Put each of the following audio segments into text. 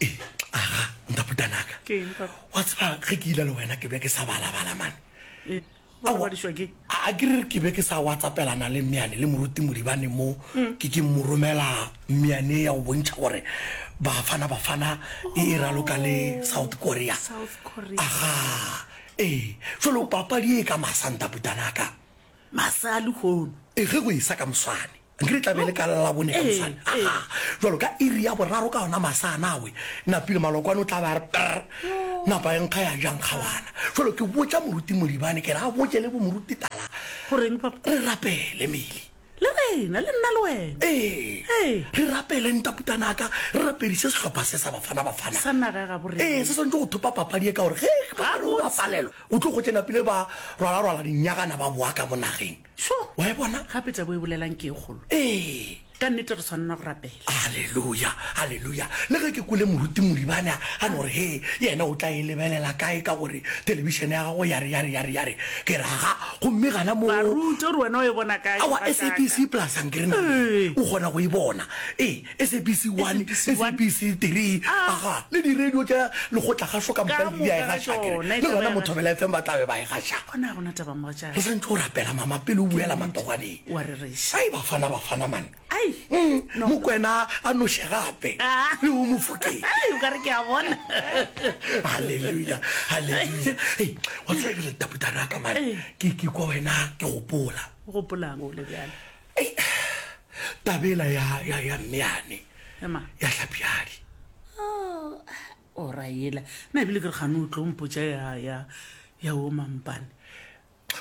E, aga, ntaputanaka. Ke eng, Papa? Wa tseba, ge ke ile le wena ke be ke sa balabala mane. E, wa robadišwa ke? A ke re ke be ke sa watsapelana le Mmeane le Moruti Modibane mo mm. ke ke mo romela Mmeane ya go bontšha gore Bafana Bafana e e raloka le oh, South Korea. South Korea. Aga, ee, jalo papadi e ka masa ntaputanaka. Masa a lehono. E ge go e sa ka moswane. nke re tlabe le ka labone ka mosane aa jalo ka iri ya boraro ka ona masa nawe napile malokwane o tla ba re pr napa e nkga ya jang kgawana jalo ke botsa moruti modibane ke re a botse le bomoruti tala goreng papa re rapele mele le rena le nna le wena ee ee re rapele ntaputanaka re raperise sehlopha se sa bafana bafana sa naga ya gabo re ee se swantse go thopa papadi e ka gore ge ba re o bapalelo o tlo go tsena pele ba rwala rwala dinyagana ba boa ka mo nageng so wa e bona gape tabo e bolelang ke e kgolo ee ka nnete re tshwanela go rapela halleluja halleluja le ge ke kole moruti moribane a a no gore he yena o tla e lebelela kae ka gore telebišene ya gago yare yare yare yare ke raga gomme gana mo baruti gore wena o e bona kae awa sabc plus ankere na o kgona go e bona ee SABC 1, SABC 3, aga, le diradio tša lekgotlakgašo ka moka di a e gaša, ke re, le gona Mothobela FM ba tla be ba e gaša. Gona gona taba mogatšaka. Re santse o rapela mama pele o buela matogwaneng. Wa re reša. Ai bafana bafana man. Ai. Mm, Mokwena a noše gape. Ah. Le o mofokeng. Ai o ka re ke a bona. Hallelujah. Hallelujah. Ei, wa tsaya ke le taputara ka man. Ke ke kwa wena ke gopola. Gopolang o le bjale. Ei, taba ela ya, ya, ya mme yane Ya mang? ya hlapjadi Oh, o ra ela na ebile ke re gane o tlo mpotša ya ya ya o mampane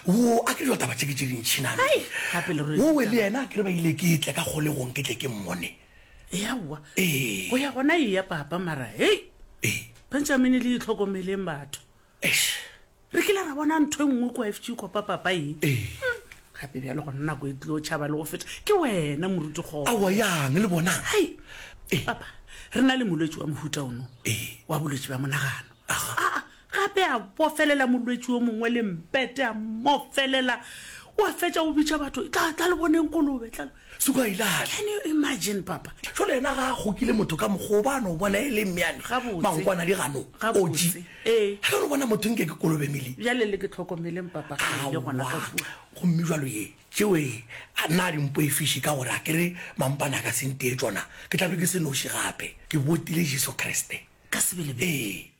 wo a ke dilo taba tše ke tše dintšhinane Hai, gape le rwele wo we le ditaba. yena a ke re ba ile ke tle ka kgolegong ke tle ke mmone eaowa Ee. go ya gona e ya papa mara hei ee benjamine le itlhokomeleng batho eish Re kile ra bona ntho e nngwe kua FG kua papapa ye. Ee. Gape bjalo gona nako e tlilo tšhaba le go feta ke wena moruti kgogo. Aowa yang le bonang. Hai. Ee. Papa, re na le molwetši wa mohuta ono. Ee. Wa bolwetši bja monagano. Aha. Aa, gape a bofelela molwetši yo mongwe le mpete a mmofelela. O a fetša o bitša batho, Tla, tla le boneng kolobe, tla. suka e lahle can you imagine papa jo le ena ga gokile motho ka mogo ba no bona e le mmeane mangwana di gano oji eh ha re bona motho nke ke kolobe mili ya le le ke tlhokomeleng papa ga le gona ka fu go mme jwa lo ye tšeo e a na di mpo e fishi ka gore a ke re mampana ka sente e tsona ke tla be ke se noši gape ke botile Jesu Kriste ka sebele be